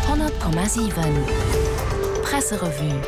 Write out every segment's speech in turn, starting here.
100,7 Presserevue.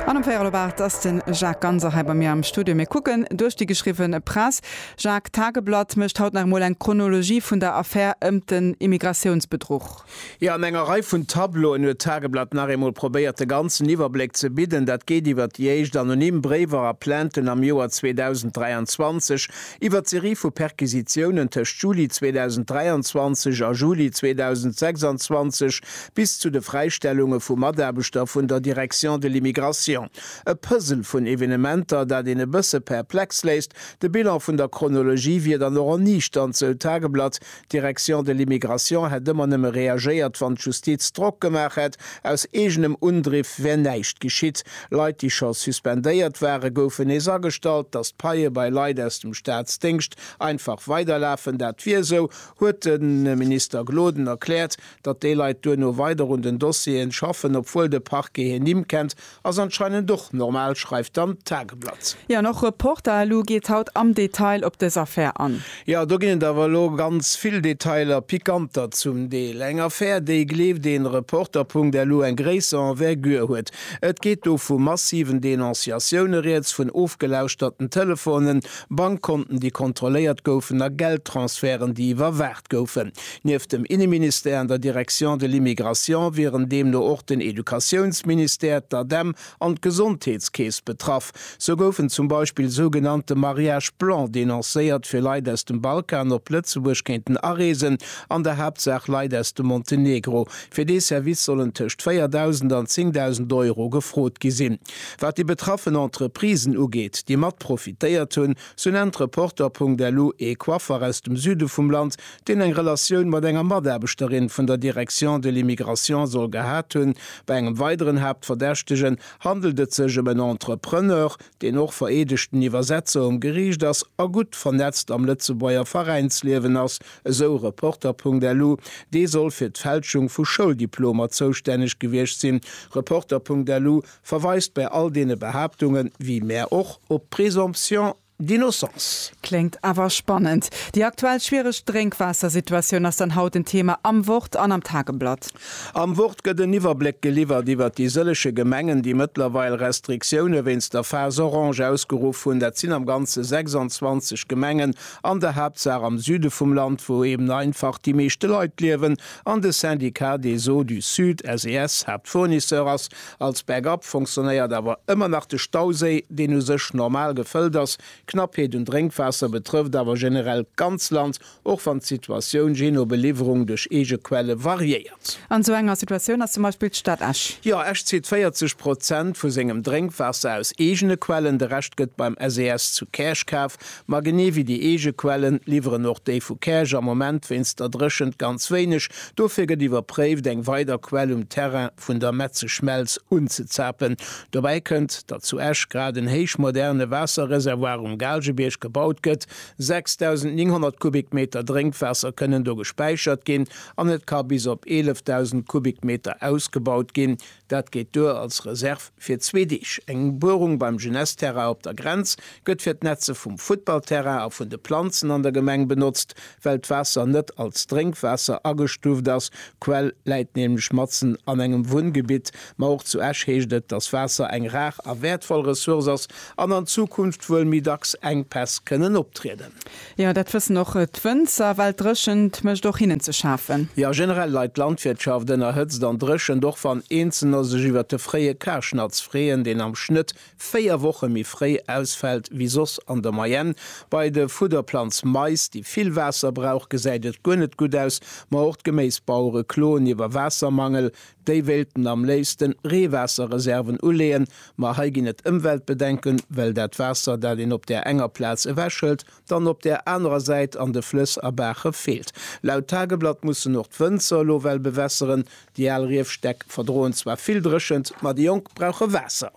An um Véierel op 8 ass den Jacques Ganser hei bei mir am Studio. Mir kucken duerch déi geschriwwen Press. Jacques, d'Tageblatt mécht haut nach emol eng Chronologie vun der Affär ëmt den Immigratiounsbedruch. Jo, an enger Rei vun Tableauen huet d'Tageblatt nach eemol probéiert de ganzen Iwwerbléck ze bidden. Dat geet iwwert déi éischt anonym Bréiwer a Plainten am Joer 2023, Iwwer d'Serie vu Perquisitiounen tëscht Juli 2023 a Juli 2026 bis zu de Fräistellunge vu Mataarbechter vun der Direction de l'immigration. E Puzzle vun Evenementer, dat een e bësse perplex léisst. De Bilan vun der Chronologie wier dann och erniichternd, sou d'Tageblatt, D'Direction de l'Immigration hätt ëmmer nëmme reagéiert, wann d'Justiz Drock gemaach hätt. Aus eegenem Undriff wär näischt geschitt. Leit, déi scho suspendéiert waren, goufen nees agestallt. Datt d'Paie bei Leit aus dem Staatsdéngscht einfach weiderlafen, dat wier esou, huet de Minister Gloden erkläert. Datt déi Leit duerno weider un den Dossieren schaffen, obwuel de Parquet hir Nimm kennt, Ass anscheinend och normal, schreift dann d'Tageblatt. Jo, an och Reporter elu geet haut am Detail op dës Affär an. Jo, do ginn et awer elo ganz vill Detailer, pikanter zum Deel. Eng Affär, déi, gleeft een Reporter. Elu eng gréisser Envergure huet. Et geet do vu massiven Denonciatioune rieds, vun ofgelauschterte Telefonen, Bankkonten, déi kontrolléiert goufen a Geldtransferten, déi iwwerwaacht goufen. Nieft dem Inneministère an der Direction de l'immigration wieren deemno och den Educatiounsministère, d'ADEM an d'Gesondheetskeess betraff. Sou goufen zum Beispill sougenannte Mariage blanc denoncéiert, fir Leit aus dem Balkan op Lëtzebuerg kéinten areesen, an der Haaptsaach Leit aus dem Montenegro. Fir dee Service sollen tëscht 4.000 an 10.000 Euro gefrot gi sinn. Wat déi betraffen Entreprisen ugeet, déi mat profitéiert hunn, Sou nennt Reporter.lu ee Coiffer aus dem Süde vum Land, deen eng Relatioun mat enger Mataarbechterin vun der Direction de l'immigration soll gehat hunn. Bei engem weideren Haaptverdächtegen handelt et sech ëm en Entrepreneur, deen och vereedegten Iwwersetzer um Geriicht ass a gutt vernetzt am Lëtzebuerger Veräinsliewen ass, esou Reporter.lu. Dee soll fir d'Fälschung vu Schouldiplomer zoustänneg gewiescht sinn. Reporter.lu. Verweist bäi all deene Behaaptungen, wéi mär och, op d'Présomption d'innocence. Kléngt awer spannend. Déi aktuell schwiereg Drénkwaassersituatioun ass dann haut en Thema am Wort an am Tageblatt. Am Wort gëtt en Iwwerbléck geliwwert iwwert déi sëllege Gemengen, déi mëttlerweil Restriktioune wéinst der Phase Orange ausgeruff hunn. Dat sinn am Ganze 26 Gemengen, an der Haaptsaach am Süde vum Land, wou eben einfach déi meeschte Leit liewen an de Syndicat des Eaux du Sud, SES, Haaptfournisseur ass. Als Backup funktionéiert awer ëmmer nach de Stauséi, deen u sech normal gefëllt ass. D'Knappheet un Drénkwaasser betrëfft awer generell d'ganz Land, och wann d'Situatioun jee no Beliwwerung duerch eege Quelle variéiert. An esou enger Situatioun ass zum Beispill d'Stad Esch. Jo, Esch zitt 40 Prozent vu sengem Drénkwaasser aus eegene Quellen, de Rescht gëtt beim SES zu Käerch kaf. Ma genee wéi déi eege Quellen, liwweren och déi vu Käerch am Moment wéinst der Dréchent ganz wéineg. Dofir gëtt iwwerpréift, eng weider Quell um Terrain vun der Metze Schmelz unzezapen. Dobäi kënnt, datt zu Esch grad en héichmoderne Waasserreservoir um Gaalgebierg gebaut gëtt. 6.900 Kubikmeter Drénkwaasser kënnen do gespäichert ginn an et ka bis op 11.000 Kubikmeter ausgebaut ginn. Dat geet duer als Reserv fir zwee Deeg. Eng Buerung beim Jeunesse-Terrain op der Grenz gëtt fir d'Netze vum Futtballterrain a vun de Planzen an der Gemeng benotzt. Well d'Waasser net als Drénkwaasser agestuuft ass, d'Quell läit nämlech matzen an engem Wunngebitt, ma och zu Esch heescht et, datt Waasser eng rar a wäertvoll Ressource ass an an Zukunft wuel méi dacks Enkpäss kënnen optrieden. Jo, dat wëssen och d'Wënzer, well d'Dréchent mécht och hinnen ze schafen. Jo, generell leit d'Landwirtschaft ënner Hëtzt an Dréchent, och wann Eenzelner sech iwwert de fréie Karschnatz freeën, deen am Schnëtt véier Woche méi fréi ausfält wéi soss an der Moyenne. Bei de Fudderplanz Mais, déi vill Waasser brauch, gesäit et guer net gutt aus. Ma och d'Geméisbauere kloen iwwer Waassermangel. Déi wéilten am léifsten Reewaasserreserven uleeën, ma hei ginn et Ëmweltbedenken, well dat Waasser, dat een op där enger Plaz ewechhëlt, dann op där anerer Säit an de Flëss a Baache feelt. Laut Tageblatt mussen och d'Wënzer elo well bewässeren, Déi al Riefstäck verdroen zwar vill Dréchent, ma déi jonk brauche Waasser.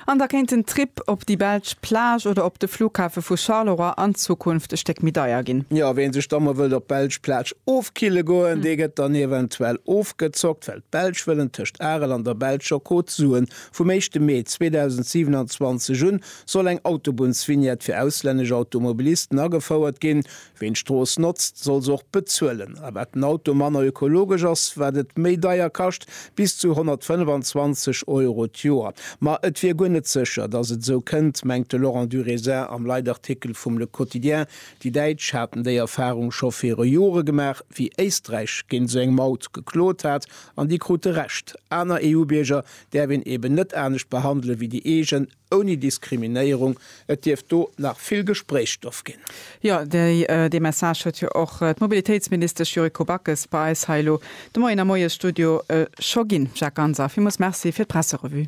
An da kéint den Trip op déi belsch Plage oder op de Flughafe vu Charleroi an Zukunft e Stéck méi deier ginn. Jo, ween sech da mol wëllt op d'belsch Plage ofkille goen, dee gëtt dann eventuell ofgezockt, well d'Belsch wëllen tëscht Arel an der belscher Côte d'Azur vum éischte Mee 2027 un soll eng Autobunnsvignette fir auslännesch Automobilisten agefouert ginn. Ween d'Strooss notzt, soll se och bezuelen. A wat den Auto manner ökologesch ass, wat et méi deier kascht, bis zu 125 Euro d'Joer. Ma et wier guer net sécher, datt et esou kënnt, mengt de Laurent Durézin am Leitartikel vum Le Quotidien. Déi Däitsch haten déi Erfarung scho viru Jore gemaach, wéi Éisträich géint esou eng Maut geklot hat, an déi krute Recht. Aner EU-Bierger däerf een eben net anescht behandele wéi déi eegen. Ouni Diskriminéierung, et dierft do nach vill Gespréichsstoff ginn. Jo, dee Message huet jo och d'Mobilitéitsministesch Yuriko Backes bei eis hei elo de Moien am Moiesstudio scho ginn. Jacques Ganser, villmools Merci fir d'Presserevue.